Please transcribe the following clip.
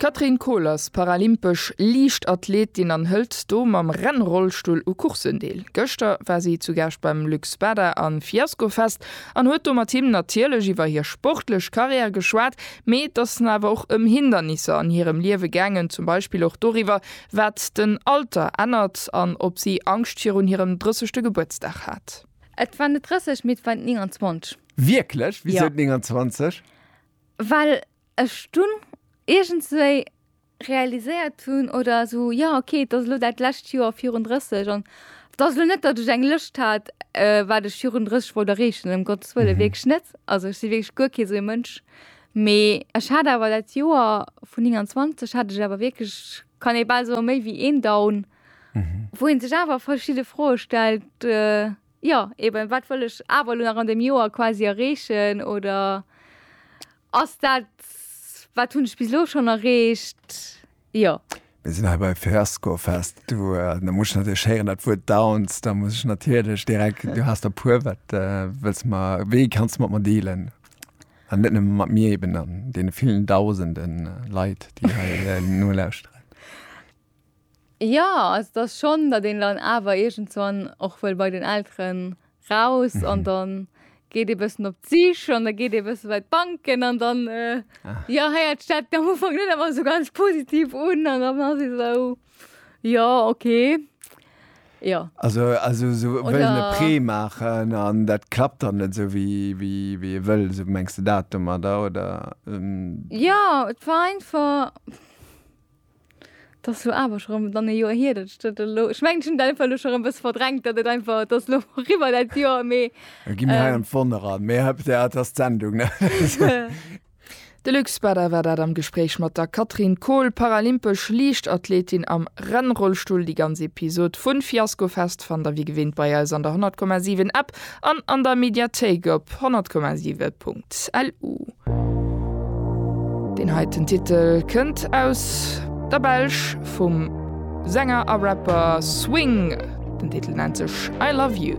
D'Catherine Kohl ass paralympesch Liichtathletin an hëlt do mam Rennrollstull u Courssen deel. Gëschter war si zu Gaascht beim Luxspada a Fiascofest an huet do mat him natierlech iwwer hir sportlech Karriär geschwat, mee et ass awer och ëm Hindernisser an hirem Liewe gaangen, zum Beispill och doriwwer, wat den Alter ännert an ob si Angscht virun hirem drëssegte Gebuertsdag hat. Et war net 30, mee et war 29. Wierklech? Wisou 29? Well ech dunn iergendswéi realiséiert hunn, oder esou, jo okay, et ass elo dat lescht Joer virun 30 an et ass elo net, datt ech eng Lëscht hat, wat ech virun 30 wollt erreechen, ëm Gottes wëlle wierklech net. Also ech si wierklech guer kee sou ee Mënsch. Mee ech hat awer dat Joer vun 29 hat ech awer wierklech, kann ee bal soen, méi wéi een Down, wou ee sech awer verschidde Froe stellt, Jo, eben, wat wëll ech awer elo nach an deem Joer quasi erreechen oder ass dat, wat hunn ech bis elo schonn erreecht? Jo. Mir sinn hei bei Fiascofest. Du, da muss ech natierlech héieren, dat Wuert Downs. Da muss ech natierlech direkt, du has der e puer, wat wëlls mer, wéi kanns du mat mer dealen? An net nëmme mat mir, eben an deene villen Dausenden Leit, déi hei nolauschteren. Jo, also dass schon, datt een dann awer iergendswann och wëll bei den Elteren raus an dann geet ee bëssen op d'Sich an da geet ee bësse bei d'Banken an dann, jo, héiert sech dat am Ufank net ëmmer esou ganz positiv un an dann ass ee esou, jo, okay, jo. Also also sou wëllen e Prêt maachen an dat klappt dann net esou wéi ee wëll, sou mengs de dat domadder, oder? Jo, et war einfach. 't ass elo awer scho rëm dann e Joer hier, datt ech dat elo, ech mengen ech hunn dat einfach elo scho rëm e bësse verdrängt, datt et einfach, 't ass elo eriwwer dat Joer, mee. Da gi mir hei an d'Wonnere, mee hëpp, jo, 't ass d'Sendung, ne? De Luc Spada war dat am Gespréich mat der Catherine Kohl, paralympesch Liichtathletin am Rennrollstull. Déi ganz Episod vu Fiaskofest fannt der wéi gewinnt bei eis an der 100,7 App. An an der Mediathéik op 100,7.lu. Deen heiten Titel kënnt aus der Belsch vum Sänger a Rapper Swing. Den Titel nennt sech I Love You.